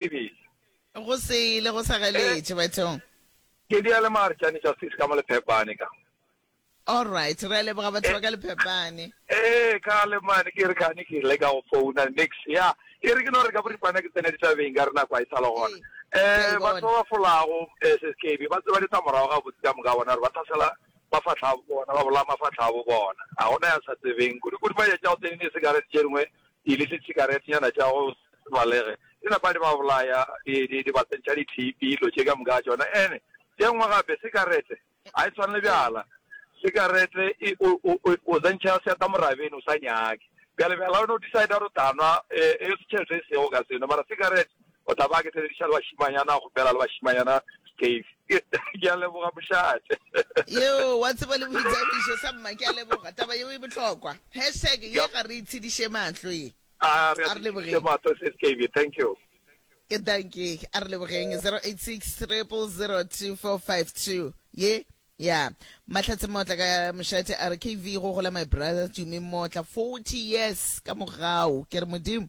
Bibele. Go sele go sa galetše bathong. Ke di ale mare tšane tša sis ka mo lephepane ka. Alright, re a leboga batho ba ka lephepane. Ee, ka le mane ke re kane ke le ka go founa nix ya e re ke no re ka boripana ke tsena ditabeng ka re nako a e sa le gona. Eh, batho ba ba folago eh, se skebe ba tseba ditsa morago ga botse ka moka bona re ba thasela mafatlha a bona ba bolaya mafatlha a bo bona a gona ya sa tsebeng kudu kudu ba ya tšao tsene ne se ka re tšengwe Pele ditšhikaretenyana tša go se balege di napa di ba bolaya, di, di, di ba tsentšha dithipi, dilo tše ka moka tšona. Ene tše nngwe gape, sikarete ga e tshwane le bjala. Sikarete e, o, o, o, o zentšha seeta morabeni, o sa nyake. Bjale bjala o no decide gore o tla nwa, e, e se tšhelete e sego ka seno, mara sikarete O tla ba ke sebediša le bašimanyana go bela le bašimanyana Steve. Ke a leboga mošate. Yeo, wa tseba le boithabišo sa mma, ke a leboga. Taba yeo e bohlokwa. Hashtag ye ga re itshediše mahlo ye. A re a itshediše mahlo se Steve. Thank you. Ke dankie. A re lebogeng. 0860002452 ye ya Mahlatse Motla ka mošate a re KV go gola my brother Tumi Motla 40 years ka mogau. Ke re Modimo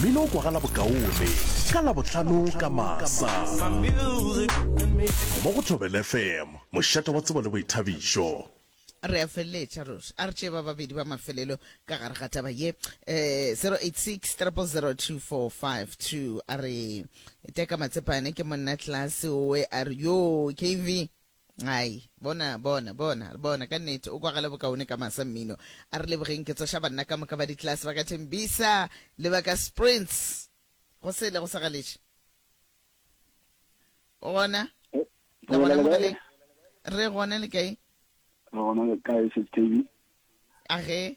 Mmino o kwagala bokaone ka Labohlano ka masa mo go Thobel FM, mošate wa tsebo le boithabišo. re a feleletša ruri a re tšee ba babedi ba mafelelo ka gare ga taba ye um 086 3002452 a re teka matsepane ke monna tlase owe a re yo kv Ai, bona, bona, bona, bona, ka nnete, o kwagala bokaone ka masa mmino. A re lebogeng ke tsoša banna ka moka ba ditlelase ba ka Tembisa le ba ka Sprints. Go sele go sa galetše. O gona? Le gona mo galeng? Re gona le kae? Re gona le kae, Sesi Thabi? Age,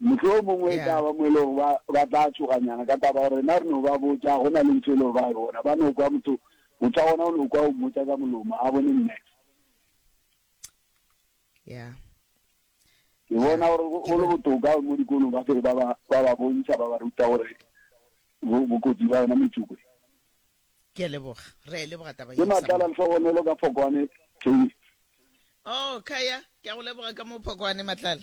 Mohlomongwe e ka ba mo e lego ba, ba tla tšhoganyana ka taba ya gore rena re no ba botša, go na le ntho e lego ba e bona. Ba no kwa motho, motho wa gona o no kwa o mmotša ka molomo, a bone nne. Yeah. Ke bona gore go, go le botoka mo dikolong ba fele ba ba, ba ba bontšha, ba ba ruta gore bo, bokotsi ba yona metsoko e. Ke a leboga. Re a e leboga taba ye, Ke Samona. matlala lehlogonolo ka Phokwane Taste. Oh, Khaya, ke a go leboga ka mo Phokwane, matlala.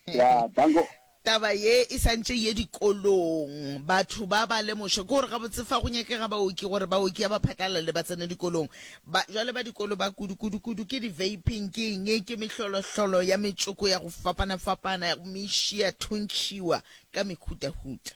Ya, danko. Taba ye e santše ye dikolong, batho ba ba lemoše. Ke gore gabotse fa go nyakega baoki, gore baoki ya ba phatlalale ba tsene dikolong. Ba, jwale ba dikolo ba kudu, kudu, kudu, ke di-vaping, ke eng, ke mehlolohlolo ya metsoko ya go fapana-fapana, ya go mešia, thuntšhiwa ka mekhutahuta.